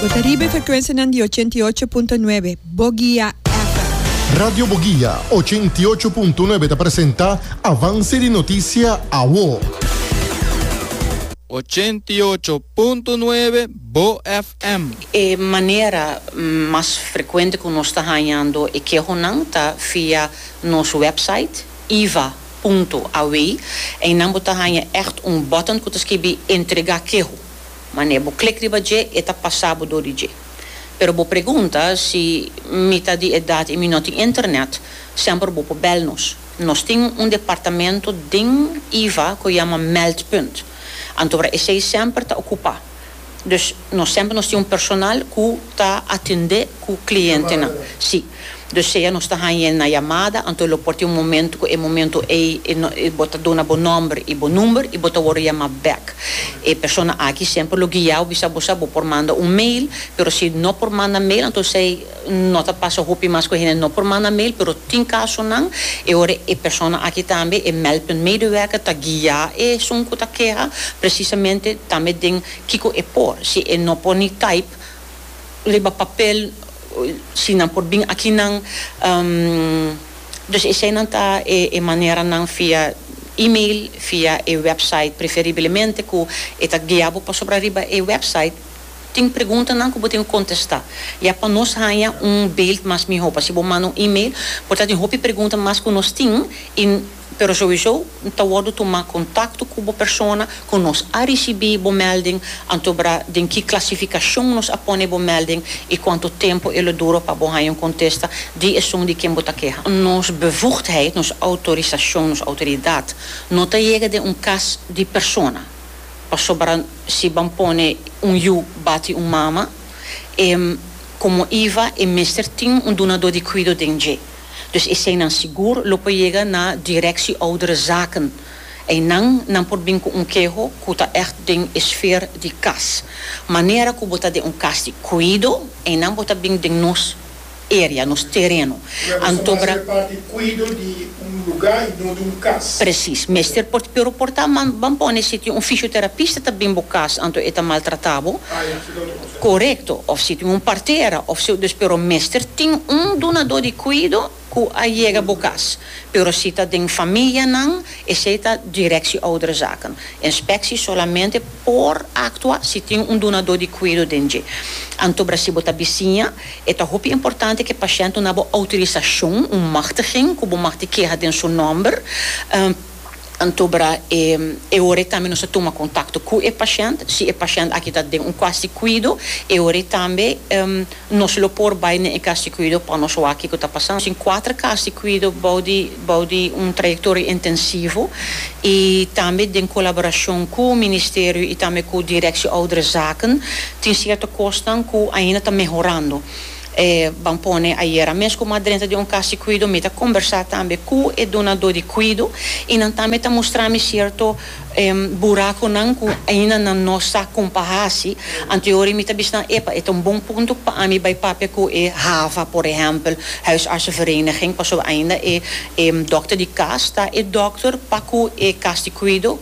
Bo ta riba e frekuensianan di ochenta i ocho punto nuebe Bogia FM. Radio Bogia ochenta i ocho punto nuebe ta presenta Avanse di Notisia Awo. Ochenta i ocho punto nuebe Bo FM. E manera mas frekuente ku nos ta hañando e kehonan ta via nos wèpsait iva punto aw. Einan bo ta haña ègt un bòtòn ku ta skibi Entregá keho. Manera bo klik riba dje, e ta pasa bo dor di dje. Pero bo pregunta, Si mi ta di edat i mi no tin internet, semper bo por bel nos. Nos tin un departamento den iva ku yama Meldpunt, antobra esei semper ta okupa. Dus nos semper nos tin un personal ku ta atende ku klientenan. Si. Dus sea nos ta hañ'é na yamada, anto lo por tin un momentu ku e momentu ei bo ta duna bo nòmber i bo number i bo ta wòrdu yamá bèk. E persona aki semper lo guia'u bisa bo sa bo por manda un mail, pero si no por manda mail anto esei no ta pasa hopi mas ku hende no por manda mail, pero tin kasunan e ora e persona aki tambe e Meldpunt medewerker ta guia esun ku ta keha presisamente tambe den kiko e por, si e no por ni type. riba papel si nan por bin akinan dus eseinan ta e maneranan via email via e website preferiblemente ku e ta guia bo pasobra riba e website tin preguntanan ku bo tin ku kontesta ya pa nos haña un beeld mas mihó pa si bo manda un email por ta tin hopi pregunta mas ku nos tin i Pero souiso N ta wordo tuma contacto cu bo persona cu nos a ricibi bo melding, anto bra den ki clasificacion nos a pone bo melding y cuanto tempo e lo duro pa bo haya un contesta di esun di ken bo ta keha. Nos bevoegdheid, nos autorisacion, nos autoridad no ta yega den un cas di persona, pasobra si ban pone un yu bati un mama, e como iva e mester tin un dunador di cuido den dje. Dus eseinan sigur lo por yega na Directie Ouderenzaken. Einan nan por bin cu un keho cu ta echt den e sfeer di cas. Manera cu bo ta den un cas di cuido, einan bo ta bin den nos area, nos tereno. Anto bra. Bo ta mester parti di cuido di un luga y no di un cas. Precies. Mester por, pero por ta, man, ban pone si tin un fisioterapista ta bin bo cas, anto e ta maltrata bo. Ah ya, su ta otro cosa. Korekto, òf si tin un partera òf su dus pero mester tin un dunadó di kuido ku a yega bo kas. Pero si ta den famianan, esei ta Direksie Ouderzaken. Inspeksie solamente por aktua si tin un dunadó di kuido den dje. Anto bra si bo ta bisiña, e ta hopi importante ku e pashènt duna bo outorisashon, un machtiging, ku bo mag di keha den su nòmber. Anto bra e e ora e tambe nos ta tuma kontakto ku e pashènt, si e pashènt aki ta den un kuas di kuido, e ora ei tambe nos lo por bai na e kas di kuido pa nos wak kiko ta pasando. Nos tin kuater kas di kuido bou di bou di un trayektoria intensivo i tambe den kolaborashon ku ministerio i tambe ku direksio ouderenzaken tin sierto kosnan ku ainda ta mehorando. E ban pone ayera mes ku madrenta di un kas di kuido mi ta kombersá tambe ku e dunadó di kuido i nan tambe ta mustra mi sierto burakunan ku ainda nan no sa kon pa hasi. Anteori mi ta bisa nan epa e ta un bon punto pa ami bai papia ku e hava por ehèmpel huisartsenvereniging pasobra ainda e dòkter di kas ta e dòkter pa ku e kas di kuido